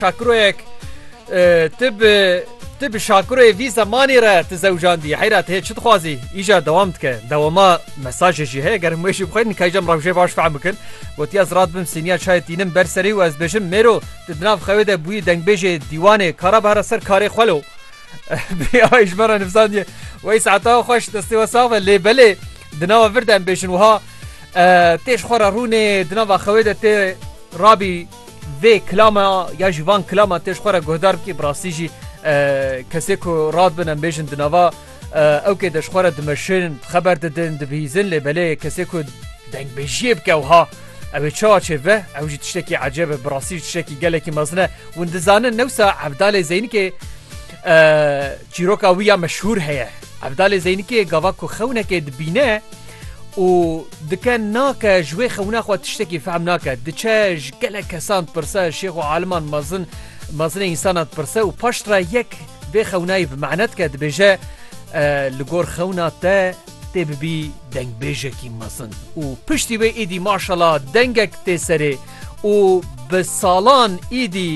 Şakiroyek tu bi tu bi şakiroyê vî zemanî re tu zewcandî heyra tu hê çi dixwazî îja dewam dike dewama mesajê jî heye ger hemûê jî bixwînin nikayîcem rewşê baş fehm bikin gotiya zirat bim sîniya çayê tînim ber serî û ez bêjim mêro tu di nav xewê de bûyî dengbêjê dîwanê kara bihera ser karê xwe lo ay ji me re nivsandiye wey saeta xweş destê we sax ve lê belê di nava vir de em bêjin wiha têj xwe re rûnê di nava xewê de tê rabî Vê kilama ya ji van kilaman tê ji xwe re guhdar bikî bi rastî jî kesê ku rad bin em bêjin di nava ew kê de ji xwe re dimeşin, xeber didin, dibihîzin lê belê kesê ku dengbêjiyê bike wiha ew ê çawa çê bibe ew jî tiştekî ecêb e bi rastî jî tiştekî gelekî mezin e. Hûn dizanin newsa Evdalê Zeynikê çîroka wî ya meşhûr heye. Evdalê Zeynikê gava ku xewnekê dibîne û dike nake ji wê xewna xwe tiştekî fehm nake diçe ji gelek kesan dipirse şêx û aliman mezin mezinê însana dipirse û paş re yek vê xewnayî bi mehne dike dibêje li gor xewna te tê bibî dengbêjekî mezin û piştî wê êdî maşala dengek tê serê û bi salan êdî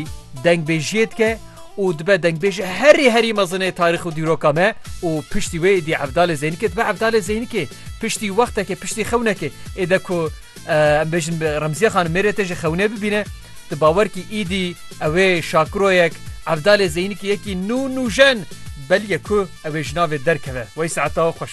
dengbêjiyê dike û dibe dengbêj herî herî mezin ê tarîx û dîroka me û piştî wê êdî Evdalê Zeynikê dibe Evdalê Zeynikê piştî wextekê piştî xewnekê êde ku em bêjin bi Remziye Xanim mêrê te ji xewnê bibîne tu bawer kî êdî ew ê şakiroyek Evdalê Zeynikê yekî nû nûjen belge ku ew ê ji navê derkeve wey saeta xweş.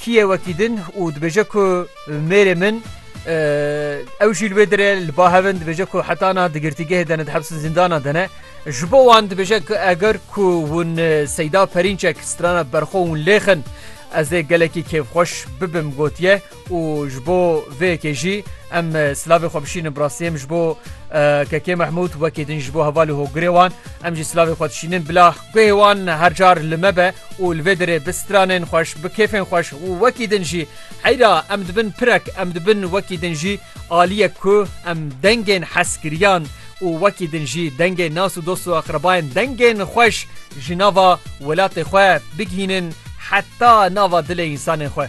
Kîyê wekî din û dibêje ku mêrê min ew jî li wê dire li ba hevin dibêje ku heta na di girtîgehê de ne di hepsin zîndana de ne. Ji bo wan dibêje ku eger ku hûn Seyda Perînçek strana berxwe hûn lêxin ez ê gelekî kêfxweş bibim gotiye. û ji bo vê yekê jî em silavê xwe bişînin bi rastî em ji bo Kekê Mehmûd wekî din ji bo hevalê hogirê wan em jî silavê xwe dişînin bila guhê wan her car li me be û li vê derê bi stranên xweş bi kêfên xweş û wekî din jî heyra em dibin pirek em dibin wekî din jî aliyek ku em dengên heskiriyan û wekî din jî dengê nas û dost û aqrebayên dengên xweş ji nava welatê xwe bigihînin heta nava dilê însanên xwe.